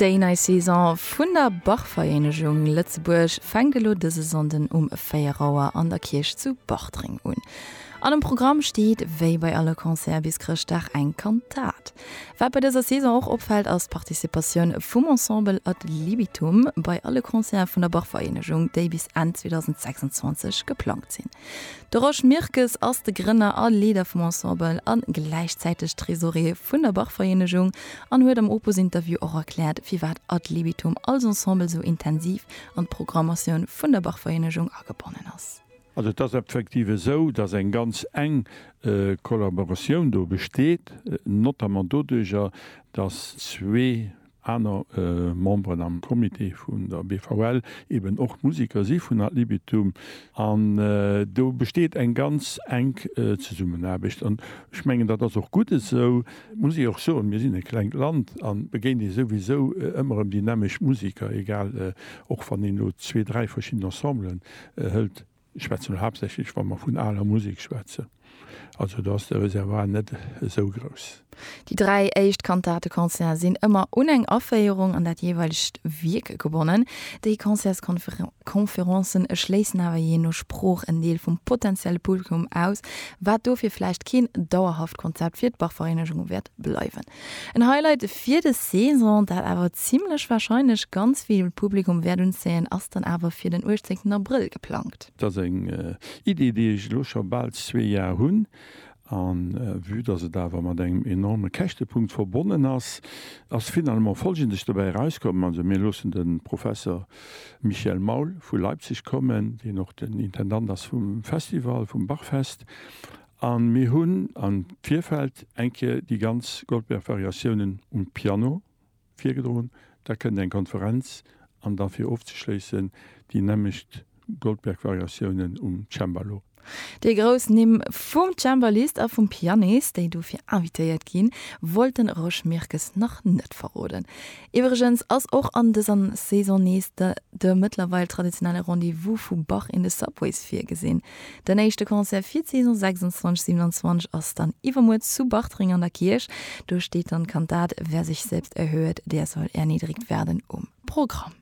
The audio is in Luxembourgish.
Déi nei Saison vun der Bachvereenegung Lëtzebuerg fänkt elo dëse Sonnden um 4 Auer an der Kierch zu Bartreng un. An um Programm steet wéi bei alle Concerte bis Chrëschtdag eng Kantat. Wat bei dëser Saison och opfält ass d'Participatioun vum Ensemble Ad Libitum bei alle Concerte vun der Bachvereenegung, déi bis Enn 2026 geplangt sinn. De Rosch Mirkes ass de Grënner a Leeder vum Ensemble a gläichzäiteg Tresorier vun der Bachvereenegung an huet am Opus-Interview och erkläert, firwat Ad Libitum als Ensemble esou intensiv an d'Programmatioun vun der Bachvereenegung agebonnen ass. Also et ass effektiv esou, datt eng ganz enk Kollaboratioun do besteet, notamment doduerjer, datt zwee aner Memberen am Comité vun der BVL eben och Musiker si vun ad libitum an do besteet eng ganz enk Zesummenaarbecht an ech mengen dat ass och gutt esou, muss ee och soen, mir sinn e klengt Land a begéint ee souwisou ëmmer erëm déi nämmesch Musiker, egal och wann een elo zwee, dräi verschidden Ensemblen hëlt. Ech schwätzen elo haaptsächlech, wa mer vun aler Musek schwätzen. Also do ass de Reservoir net esou grouss. Déi dräi éischt Kantate-Concerte sinn ëmmer un eng Aféierung an dat jeeweilegt Wierk gebonnen. Déi Concerts-Conférencen erschléissen awer jee no Sprooch en Deel vum potentielle Publikum aus, wat dofir vläicht keen dauerhaft Konzept fir d'Bach-Vereenegung wäert bleiwen. En Highlight fir des Saison, dat awer zimmlech wahrscheinlech ganz vill Publikum wäert unzéien, ass dann awer fir den 18 Abrëll geplangt. Dat ass eng Idee, déi ech elo scho bal zwee Jar hunn, a vue dass et awer mat engem enorme Käschtepunkt verbonnen ass, ass finalement Folgendes dobäi erauskomm, Also mir loossen de Professor Michel Maul vu Leipzig kommen, deen och den Intendant ass vum Festival, vum Bachfest, A mir hunn am Virfeld eng Kéier déi ganz Goldberg-Variatiounen um Piano virgedroen. Da kënnt eng Konferenz an da fir ofzeschléissen déi nämmlecht Goldberg-Variatiounen um Cembalo. Déi grouss Nimm vum Cembalist a vum Pianist, déi dofir invitéiert ginn, wollt den Rosch Mirkes nach net verroden. Iwwregens ass och an dëser Saison nees de mëttlerweil traditionelle Rendez-vous vu Bach in the Subways virgesinn. Den éischte Concert fir d'Saison 26, 27 ass dann iwwermuer zu Bartreng an der Kierch. Do steet dann d'Kantat Wer sich selbst erhöhet, der soll erniedrigt werden um Programm.